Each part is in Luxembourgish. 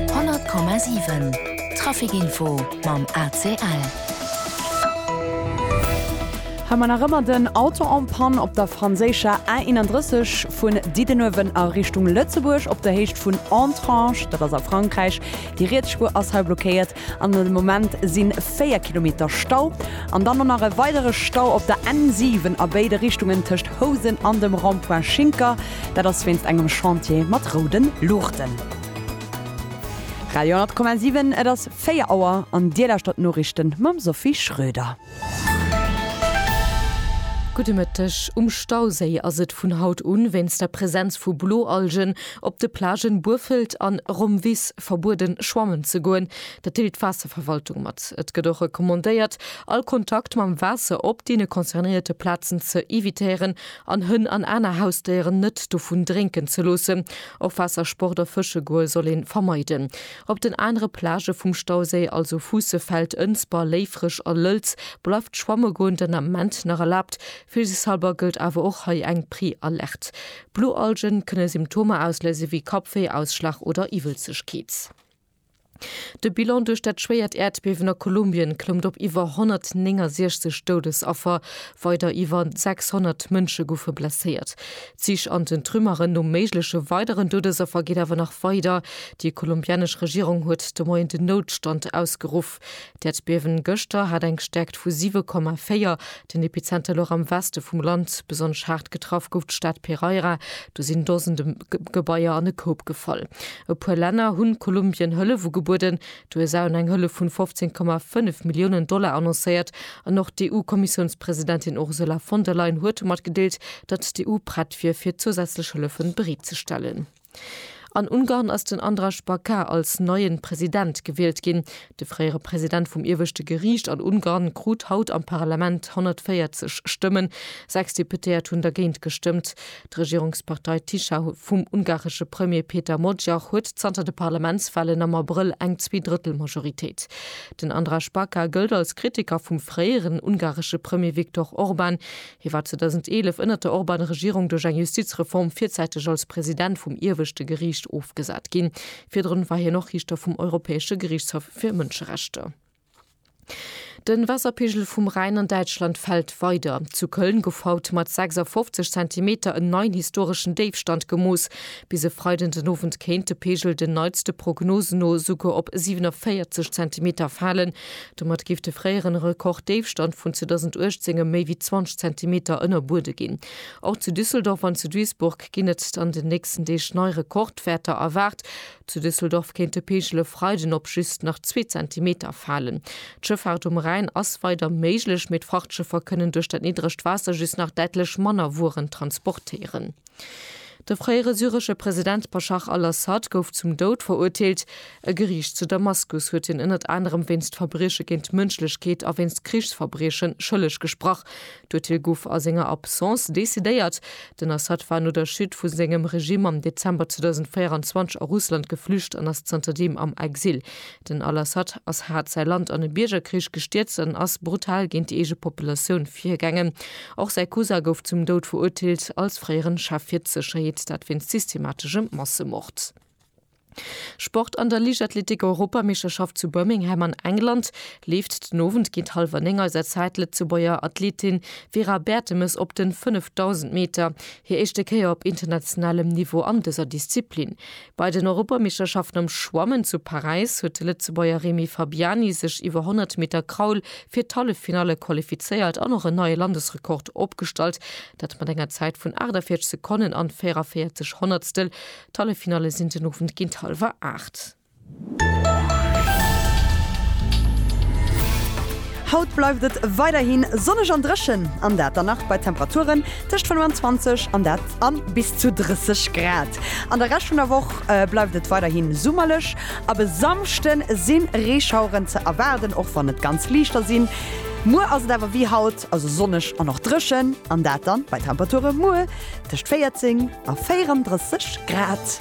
100,7 Trafic Info mam ACL. Hei man nach ëmmer den Auto en panne op der franséischer A 31 vun Diddenuewen a Richtung Lëtzebuerg op der Héicht vun Entrange, dat ass a Frankräich. Déi riets Spuer ass hei blockéiert. An de Moment sinn 4 Kilometer Stau an dann och nach e weidere Stau op der N7 a béide Richtungen tëscht Housen an dem Rond-point Schinker. Dat ass wéinst engem Chantier mat roude Luuchten. Radio 10,7 Et ass 4 Auer an Dir lauschtert d'Noriichte mam Sophie Schröder. Gudde Mëtteg, Um Stauséi ass et vun haut un wéinst der Presenz vu Bloalgen op de Plagen Burfelt an Romvis verbueden, schwammen ze goen. Dat deelt d'Waasserverwaltung mat. Et gëtt och recommandéiert, all Kontakt mam Waasser op deene concernéierte Plazen ze evitéieren an Hënn an aner Hausdéieren net dovun drénken ze loossen. Och Waassersport a fësche goe soll ee vermeiden. Op den anere Plagë vum Stauséi, also Fuussefeld, Ënsber, Léifreg a Lëlz, bleift schwamme goen den Ament nach erlaabt. Vilsichtshalber gëllt awer och hei eng Pre-Alerte. Blualgen kënne Symptomer ausléise wéi Kappwéi, Ausschlag oder Iwwelzegkeet. De Bilan duerch dat schwéiert Äerdbiewen a Kolumbien klëmmt op iwwer 169 Doudesaffer, weider iwwer 600 Mënsche goufe blesséiert. D'Sich an den Trümmeren no méigleche weideren Doudesaffer geet awer nach weider. Déi kolumbianesch Regierung huet de Moien den Noutstand ausgeruff. D'Äerdbiewen gëschter hat eng Stäerkt vu 7,4. Den Epizenter louch am Weste vum Land. Besonnesch haart getraff gouf d'Stad Pereira. Do sinn Dosende Gebaier an e Koup gefall. E puer Länner hunn Kolumbien Hëllef ugebueden. D'USA hunn eng Hëllef vun 15,5 Milliounen Dollar annoncéiert. An och d'EU-Kommissiounspresidentin Ursula von der Leyen huet matgedeelt, datt d'EU prett wier fir zousätzlech Hëllefen bereet ze stellen. An Ungarn ass den Andras Baka als neien President gewielt ginn. De fréiere President vum ieweschte Geriicht an Ungarn krut haut am Parlament 140 Stëmmen. Sechs Deputéiert hunn dergéint gestëmmt. D'Regierungspartei Tisza vum ungaresche Premier Péter Magyar huet zanter de Parlamentswahlen am Abrëll eng Zweedrëttelmajoritéit. Den Andras Baka gëllt als Kritiker vum fréieren ungaresche Premier Viktor Orban. Hie war 2011 ënnert der Orban-Regierung duerch eng Justizreform virzäiteg als President vum Ieweschte Geriicht ofgesat ginn. Virdrun war hien och Riichter vum Europäesche Geriichtshaff fir Mënscherechter. De Waasserpegel vum Rhäin an Däitschland fält weider. Zu Köln gouf haut mat 56 Zentimeter en neien historeschen Déifstand gemooss. Bis e Freiden den Owend kéint de Pegel den neitste Prognosen no esouguer op 47 Zentimeter falen. Domat géif de fréieren Rekorddéifstand vun 2018 ëm méi wéi 20 Zentimeter ënnerbuede ginn. Och zu Düsseldorf an zu Duisburg ginn et an den nächsten Deeg nei Rekordwäerter erwaart. Zu Düsseldorf kéint de Peegel e Freiden op just nach zwee Zentimeter falen. D'Schëffaart um Rhäin ass weider méiglech, mee d'Frachtschëffer kënnen duerch dat niddregt Waasser just nach däitlech manner Wueren transportéieren. De fréiere syresche President Baschar al-Assad gouf zum Doud verurteelt. E Geriicht zu Damaskus huet hien ënnert anerem wéinst Verbrieche géint d'Mënschlechkeet a wéinst Krichsverbrieche schëlleg gesprach. D'Urteel gouf a senger Absence decidéiert. Den Assad war no der Chute vu sengem Regime am Dezember 2024 a Russland geflücht an ass zanterdeem am Exil. Den al-Assad ass haart säi Land an e Biergerkrich gestierzt an ass brutal géint déi eege Populatioun virgaangen. Och säi Cousin gouf zum Doud verurteelt, als fréieren Chef fir d'Sécherheet, dat wéinst systemateschem Massemord. Sport An der Liichtathletik-Europameeschterschaft zu Birmingham an England leeft den Owend géint hallwer 9 eiser Zäit d'Lëtzebuerger Athletin Vera Bertemes op den 5000 Meter, hir éischte Kéier op internationalem Niveau an dëser Disziplin. Bei den Europameeschterschaften am Schwammen zu Paräis huet de Lëtzebuerger Remy Fabiani sech iwwer 100 Meter Kraul fir d'Halleffinalle qualifizéiert an och en neie Landesrekord opgestallt, dat mat enger Zäit vun 48 Sekonnen an 44 Honnertstel. D'Halleffinalle sinn den Owend géint hallwer 8. Haut bleift et weiderhi sonneg an dréchen, an dat der Nacht bei Temperaturen tëscht 25 an dat a bis zu 30 Grad. An der Rescht vun der Woch bleift et weiderhi summerlech, ab e Samschde si Reeschaueren ze erwaarden, och wann et ganz liichter sinn. Muer ass et awer wéi haut, also sonneg an och dréchen, an dat da bei Temperature muer tëscht 14 a 34 Grad.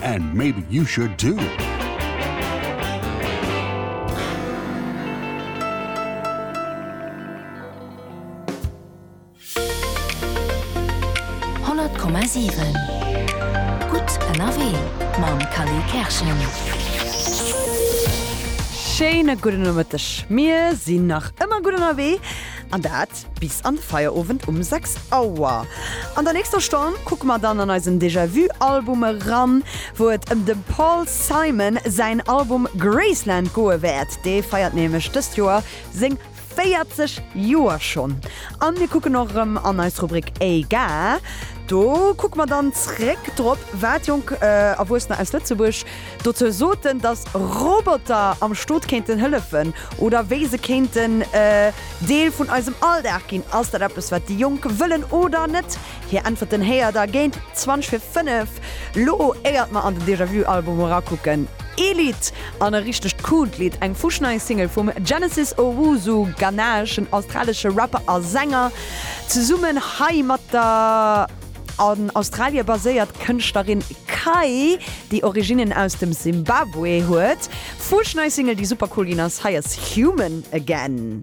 And maybe you should too! Schéine gudden Nomëtteg, mir sinn nach ëmmer gutt ënnerwee an dat. Start bis an de Feierowend um 6 Auer. An der nächster Stonn kucke mer dann an eisen Déjà Vu Album eran, wou et ëm dem Paul Simon säin Album Graceland goe wäert. Dee feiert nämlech dëst Joer seng 40 Joer schonn. An mir kucken och erëm an eis Rubrik Éga. Do kucke mer dann zréck drop, wat jonk Erwuessener aus Lëtzebuerg D'Auteur soten, datt Roboter am Stot kéinten hëllefen oder wéi se kéinten e Deel vun eisem Alldag ginn. Ass dat eppes, wat déi Jonk wëllen oder net? Hir Äntwerten héiert der géint 20 fir 5. Lo éiert mer an den Déjà-Vu-Album erakucken, ee Lidd, an e richtegt coolt Lidd, eng fuschnei Single vum Genesis Owusu, ghanaeschen, australesche Rapper a Sänger, zesummen hei mat der. An Australie baséiert d'Kënschtlerin Kai, déi Originnen aus dem Simbabwe huet. Fuerschnei Single, déi super cool ginn ass, hei ass Human Again.